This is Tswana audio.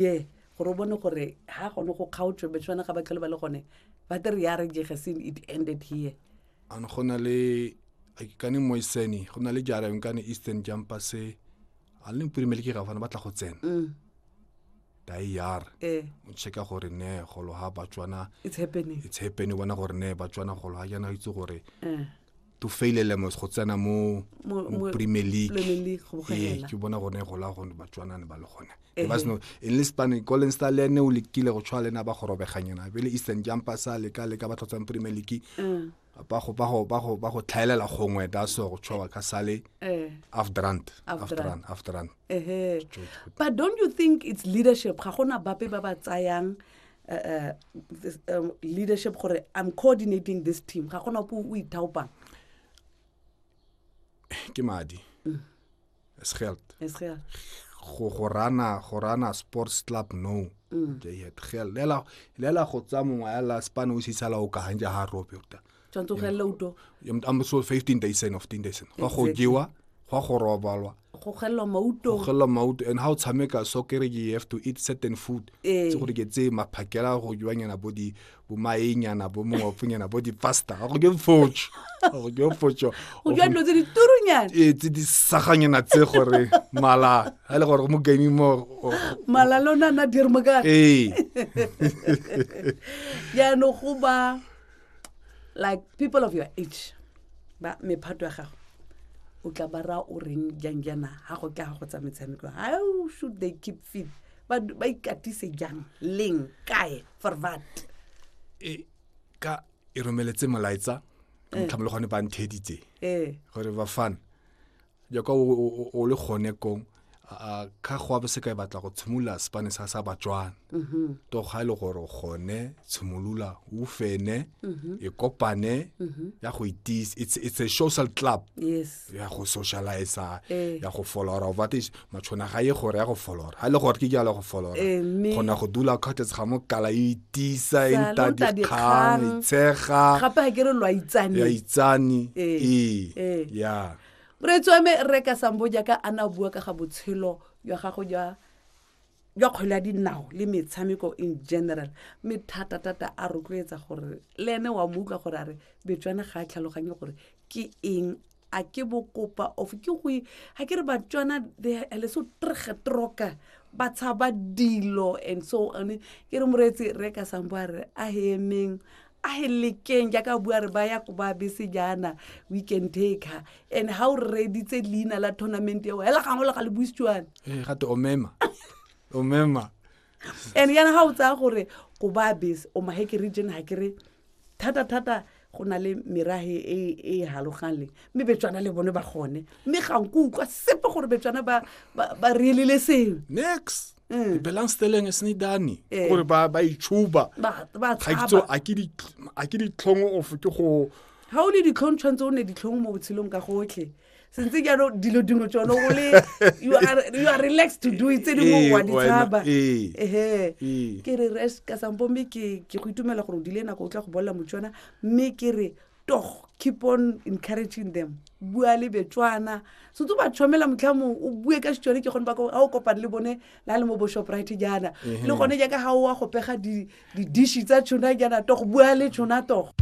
ye gore o bone gore ha gone go kgaotswe betswana ga ba tlhole ba le gone ba te re ya re jege sin it ended here an go na le kane moisene go na le jara yong kane eastern jumper se a le mpirimele ke gafana ba tla go tsena mm. dayar eh. o checka gore ne golo ha batswana it's happening it's happening bona gore ne batswana golo ha jana itse gore eh. to fail elemos go tsena mo premier league ee, ke bona gone e gola gone batswanane ba le gone e ba seno e le spane colin star le ene o lekile go tshwa le ena ba go robeganyana pele eastern jumper sa le ka le ka ba tlhotsang premier league mm. ba go ba go ba go ba go tlhaelela gongwe da so go tshwa ka sale eh. after run after run after run but don't you think it's leadership ga gona bape ba ba tsayang uh, uh, this, um, leadership gore i'm coordinating this team ga gona po o ithaopang ke madi mm. is geld is geld go go rana go rana sports club no mm. ke yet gel lela lela go tsa mongwe ya la span o sisala o ka hanja ha rope uta tshwanetse go gelela uto I'm so 15 days in of 10 days in go go jewa go go robalwa go gelela mauto go gelela mauto and how tshameka so kere you have to eat certain food eh. tse gore ke tse maphakela go jwanyana bo di bo maenyana bo mongwaponyana bo di pasta go ke focho go ke focho go jwa dilo tse di turunyana e tse di saganyana tse gore mala ha le gore mo game mo mala lona na dirmo ka eh ya no go ba like people of your age ba mephato ya gago o tla ba raya o reng jang jaana ga go tla ga go tsa metshameko how should they keep fit ba ba ikatise jang leng kae for what e ka e romeletse molaetsa ka motlhamolo gone ba ntheditse ee gore bafana jaaka o le gone kong ka go abe seka e batla go tshimolola sepane sa sa batswana mm-hmm. to ga e le gore o gone tshimolola o fene mm-hmm. e kopane mm-hmm. ya go itise it's, it's a social club yes. ya go socialize eh. ya go follower of advantage matshona ga ye gore ya go folora ga e le gore ke jalo go folora kgona go dula kgothes ga mo kala e itisa e nta dikgang e tshega gape ga ke re lo itsane ya itsane ee ya moreetswame re ka sambo jaaka a na bua ka ga botshelo jwa gago jwa jwa kgwele ya dinao le metshameko in general mme thata-thata a rotloetsa gore le ene wa mo utlwa gore a re betswana ga a tlhaloganye gore ke eng a ke bokopa of ke go ga ke re batswana le so trege troka ba tshaba dilo and so one ke re moreetsi re ka sambo a re a emeng a e lekeng jaaka bua re ba ya ko ba bese jaana we can take her and ga o reditse leina la tournament eo hela gangwe le ga le buisitswane ee eh, gate omema omema and yana ga o tsaya gore ko ba bese o maheke region ga ke re thata-thata go na le merage e, e e galogang le mme betswana le bone ba gone mme ga nko utlwa sepe gore betswana ba relele sengwe next mm. dibelang steleng e sene dane eh. gore ba ba itshuba ga kitso a ke ditlhong of ke go ga o le ditlhong tshwanetse o ne ditlhong mo botshelong ka gotlhe sentse jalo dilo dingwe tsone o le you are relaxed to do it tse dingwe eh, wa di tshaba eh. ehe ke re res ka sampo mme ke go itumela gore o dile nako o tla go bolela motswana mme ke re tog keep on encouraging them bua le betswana so tse ba tshwamela motlha mong o bue ka setswane ke gone ba ga o kopane le bone la le mo bo shoprite jaana le gone jaaka ga o wa go pega di-dishi tsa tshona jaana togo bua le tshona togo